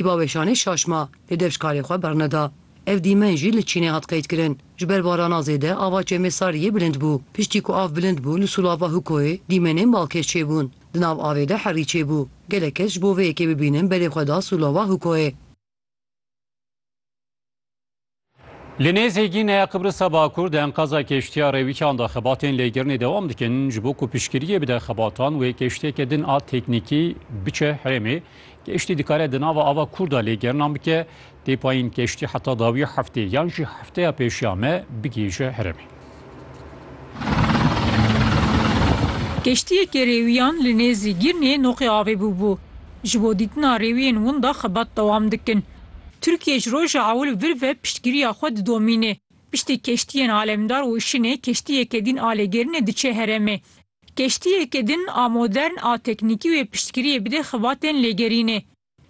Di baweşanê şaşma li deşkarê xwe berne da. Ev dîmen jî li Çînê hat qeydkirin. Ji ber barana zêde ava Çemêsariyê bilind bû. Piştî ku av bilind bû li Sulava Hukoyê dîmenên balkêş çêbûn. Di nav avê de herî çêbû. Gelek kes ji bo vê yekê bibînin berê xwe da Sulava Hukoyê. Li nêzê Gîneya Qibrisa Bakur di enqaza keştiya Rêwîkan de xebatên lêgirinê dewam dikin ji bo ku piştgiriyê bide xebatan wê keştiyeke din a teknîkî biçe herêmê. Keştî dikare di nava ava kûr de lêgerinan bike. Tê payîn keştî heta dawiya heftê yan jî hefteya pêşiya me bigihîje herêmê. Keştiyeke rêwiyan li nêzî Gîrnê noqê avê bûbû. Ji bo dîtina rêwiyên winda xebat dewam dikin. Tirkiye ji roja ewil vir ve piştgiriya xwe didomîne. Piştî keştiyên alemdar û şinê keştiyeke din alegerinê diçe heremê. Keştiyeke din a modern a teknîkî wê piştgiriyê bide xibatên lêgerînê.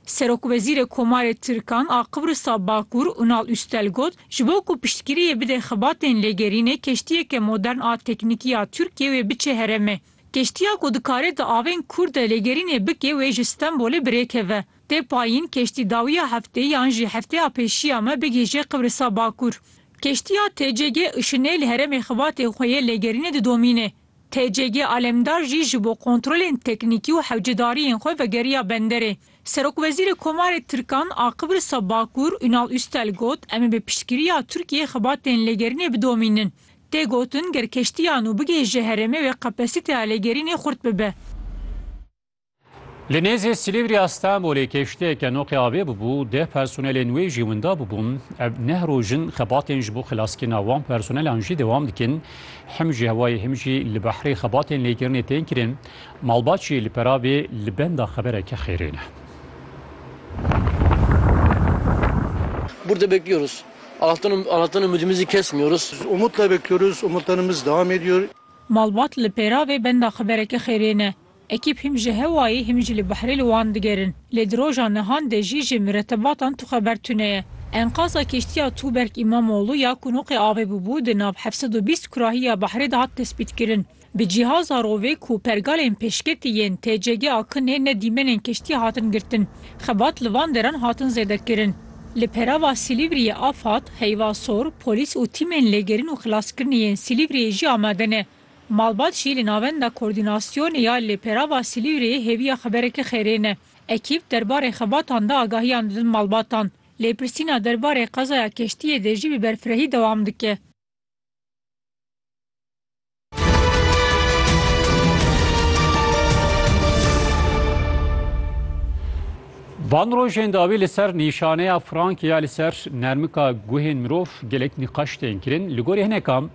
Serokwezîrê Komarê Tirkan a Qibrisa Bakur Unal Üstel got, ji bo ku piştgiriyê bide xibatên lêgerînê keştiyeke modern a teknîkî ya Tirkiye wê biçe heremê. Keştiya ku dikare di avên Kurd de lêgerînê bike wê ji Stenbolê bi rê keve. Tê payîn keştîdawiya heftê yan jî hefteya pêşiya me bigihîje Qibrisa Bakur. Keştiya TCG Işinê li heremê xibatê xwe yê lêgerînê didomîne. TCG Alemdar jî ji bo kontrolên teknîkî û hewcedariyên xwe vegeriya benderê. Serokwezîrê Komarê Tirkan a Qibrisa Bakur Ünal Üstel got, Em ê bi piştgiriya Tirkiyê xibatên lêgerînê bidomînin. Tê gotin ger keştiya nû bigihije heremê wê kapasîteya lêgerînê xurt bibe. Li nêzê Silîvriya Stenbolê keştiyeke noqê avê bûbû, deh personelên wê jî winda bûbûn. Ev neh roj in xebatên ji bo xilaskirina wan personelan jî dewam dikin. Him ji hewayê him jî li behrê xebatên lêkirinê tên kirin. Malbatçî li peravê li benda xebereke xêrê ne. Burada bekliyoruz. Allah'tan, Allah'tan ümidimizi kesmiyoruz. Umutla bekliyoruz, umutlarımız devam ediyor. Malbat li pêravê benda xebereke xêrê ne. Ekîp hîm ji hewayê hîm jî li behrê li wan digerin. Lê di roja nihan de jî ji miretebatan tu xeber tune ye. Enqaza kîştiya Tuğberk İmamoğlu ya ku noqê avê bûbû di nav heft sed û bîst kurahiya behrê de hat tespîtkirin. Bi cîhaza rovê ku pergalên pêşketî yên TCG a Kinê ne dîmenên kiştî hatin girtin. Xebat li van deran hatin zêdekirin. Li perava Silîvriyê Afad, Heyva Sor, polîs û tîmên lêgerîn û xilaskirinê yên Silîvriyê jî amade ne. Malbat jî li Navenda Koordînasyonê ya li Perava Silîvreyê hêviya xeberekî xêrêne. Ekîp derbarê xebatan de agahiyan didin malbatan. Lêpirsîna derbarê qezaya keştiyê de jî bi berfirehî dewam dike. Van rojên dawî li ser nîşaneya frankê ya li ser nermika guhên mirov gelek nîqaş tên kirin. Li gorî hinekan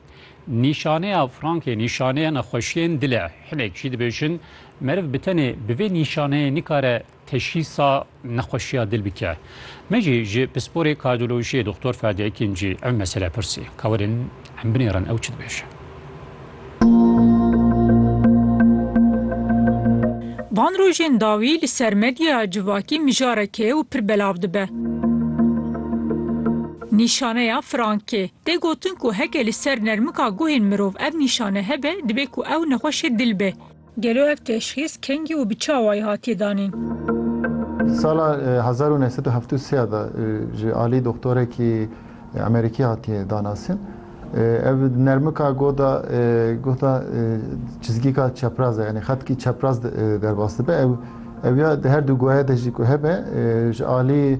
Nîşaneya frankê nîşaneya nexweşiyên dil e. Hinek jî dibêjin meriv bi tenê bi vê nîşaneyê nikare teşhîsa nexweşiya dil bike. Me jî ji pisporê kardiyolojiyê Doxtor Ferdi Ekincî ev mesele pirsî. Kawerin em binêrin ew çi dibêje. Van rojên dawî li ser medyaya civakî mijarek e û pir belav dibe. Nîşaneya frankê. Tê gotin ku heke li ser nermika guhên mirov ev nîşane hebe, dibe ku ew nexweşê dil be. Gelo ev teşxîs kengî û bi çi awayî hatiye danîn? Sala hezar û neh sed û heft û sê de ji alî doxtorekî Emerîkî hatiye danasîn. Ev nermika goh de guhda çizgîka çepraz e yanî xetkî çepraz derbas dibe. Ew ya di her du guhê de jî ku hebe ji alî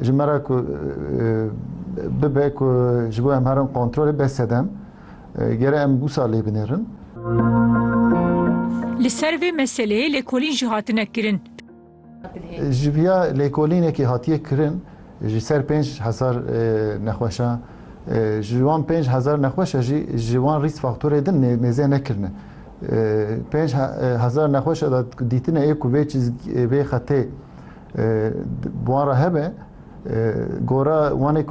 ji me re ku bibe ku ji bo em herin kontrolê be sedem gere em wisa lê binêrin. Li ser vê meseleyê lêkolîn jî hatine kirin. Ji via lêkolînekî hatiye kirin ji ser pênc hezar nexweşa ji wan pênc hezar nexweşa jî ji wan rîsk faktorê din nêzê nekirine. Pênc hezar nexweşa de dîtine ê ku vê vê xetê Bi wan re hebe gora wanê ku